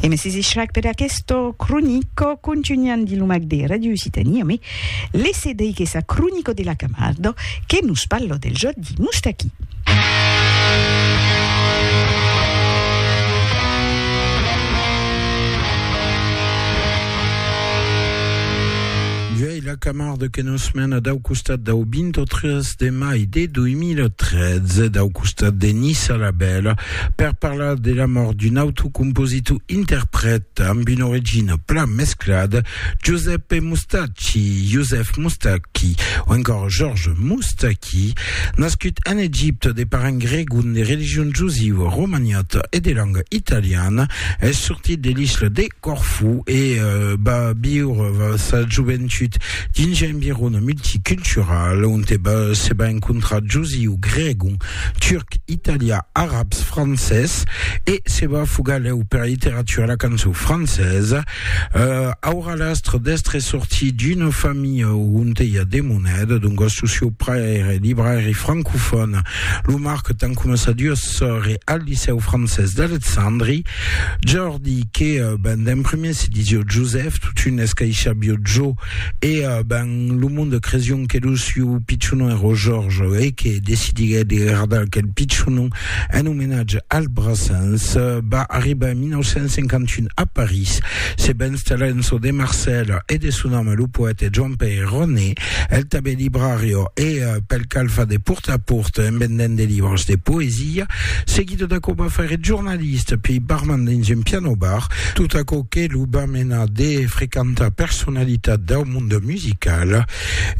E me sisi Shrek per aquesto cronico contunhan di lo mag de Radio Occitania me lese dei que sa cronico de la Camardo que nos parlo del jòc di Mustaqui. E la Camarde que nos mena dau costat dau 23 de mai de 2013, dau costat de Nissa la Bèla, per parlar de la mòrt d'un autre compositor interprèt amb una origina plan mesclada, Giuseppe Mustacchi, Joseph Moustaki, o encòra Georges Moustaki, nascut en Egipte de parents gregon de religion josiva, romaniata e de lenga italiana, es sortit de l'isla de. Corfú e va viure sa joventut dins un environ multicultural onte se va encontrar josiu, gregon, turc, italià, arabs, francés e se va fugar lèu pera literatura e la cançon francesa. Aurà l'astre d'èstre sortit d'una familha onte i a de moneda, doncas lo sieu pair èra librairi francofòn, lo marquetan coma sa duas sòrres al licèu francés d'Alexandri. Di que ben d'en prumèr se disió Josèf, totun escaishabió Jo, e ben lo monde cresión que lo siu pichonon èró Jòrge, e que decidiguèt de gardar aquel pichonon en omenatge al Brassens. Va arribar en 1951 a París, se va installar en çò de Marcèla e de son ame lo poète Joan-Pèir Roné. El tanben librario e pel cal fa de port a port en vendent de libros de poesia, seguido d'aquò va faire eth jornalista piei barman dins un piano bar, tot aquò que lo va menar de frequentar personalitats dau monde musical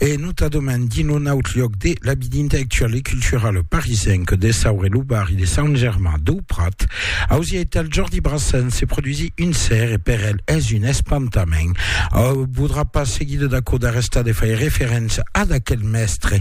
e notadament dins lo naut lloc de l'Habit intellectuel et cultural parisenc de Saur e lo barri de Sant Germain dau Prat, Ausieital Jordi Brassens se produisi un ser e per el es un espantament. Au podrà pas seguir de dacò d'arrestar de faire referéncia ad aquel mèstre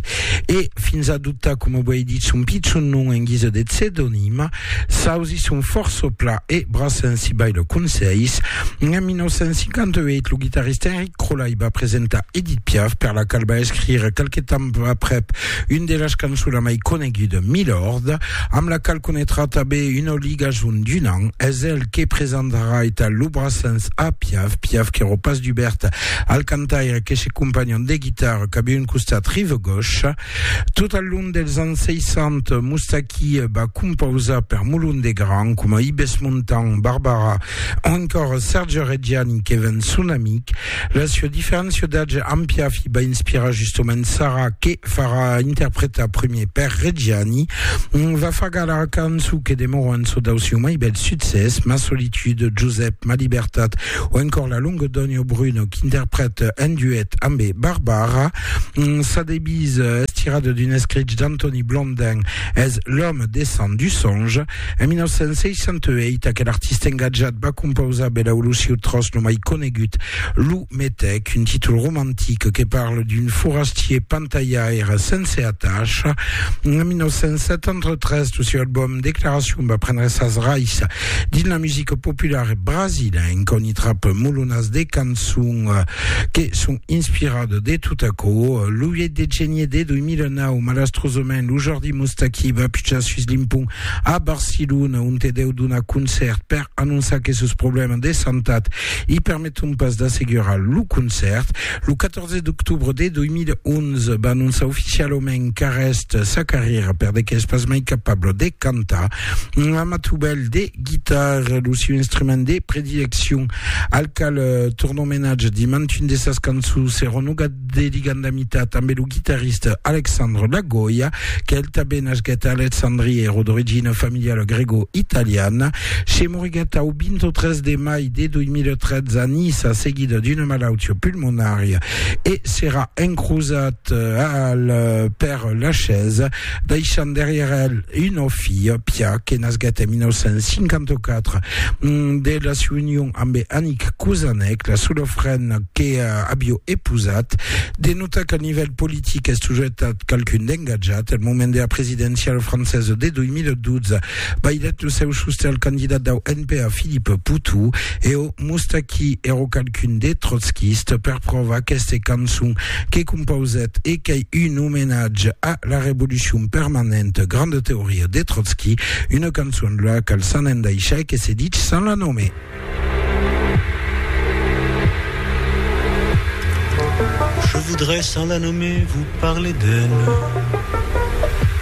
e fins adoptar, coma uèi dit, son pichon nom en guisa de psedonim. S'ausi son fòrça pla e Brassens si bai le conselhs. En 1958 lo guitarrista Enric Crolai va presentar Edith Piaf per la qual va escrire qualque temps aprèp Une de las cançonas mai conegudas, Milord, amb la qual conetrà tanben una ligason d'un an, es el que presentarà eta lo Brassens a Piaf, Piaf qu'èro pas dubèrt al cantaire que se companhon de guitarra cap un costat rive gauche. Tot al long dels ans 60, Moustaki va compausar per Molon de Gran, coma Ibes Montan, Barbara, O encòr Serge Reggiani que ven son amic, la sua diferéncia d'atge amb Piafi va inspirar justomènt Sara que farà interpretar primier per Reggiani, va far gala a cançon que demòra un çò dau siu mai bèl succès, Ma solitude, Josep, Ma libertat o encòr La longa dònha o Bruno qu'interprète en duet ambe Barbara. Sa devise es tirada d'un escrich d'Antoni Blondin, es L'homme descend du songe. En 1968, aquel artista engatjat va compausar per l'Aulusiu Tros lo mai conegut, Lo Metèc, un títol romantic que parle d'un forastier pantalhaire sense atacha. En 1973, lo seu album Declaracion va prendre sas rais dins la musica populara brasilenca, on i trap molonas de cançons que son inspiradas de tot aquò. Lo 8 de genier de 2009, malastrosament, lo jordi Eth Moustaki va pujar sus l'impont a Barcelona, onte deu donar concèrt per anonçar que sos problèmas de santat i permeton pas d'assegurar lo concèrt. Lo 14 d'octobre de 2011 va anonçar oficialament qu'arrèst sa carrièra per de qu'es pas mai capable de cantar. Un amatubèl de guitarra, lo siu instrument de predileccion, al qual torna omenatge dimantun de sas cançons, se renogat de ligandamita tanben lo guitarrista Alexandre Lagoya, qu'el tanben nasquèt a Alexandria, èra d'origina familiala grego-italiana. Se moriguèt au 23 de mai de 2013 a Niça seguida d'una malautia pulmonària e serà encrosat al Père Lachaise. deishant darrièr el una filha, Pia, que nasguèt en 1954 de la siua union ambe Annick Kouzanec, la sola frena que avió epousat. De notar qu'al nivèl politic es sujetat qualqu'un d'engatjat. Al moment dera presidenciala francesa de 2012, bailèt lo seu sostè al candidat dau NPA Philippe Poutou e o. Moustaki ero qualqu'un de trotskista per provar aqueste cançon que compausèt e qu'ei un omenatge a la revolucion permanenta, granda teoria de Trotski, una cançon la qual s'an endaishar e que se dich sans la nomer. Je voudrais sans la nomer vous parler d'elle.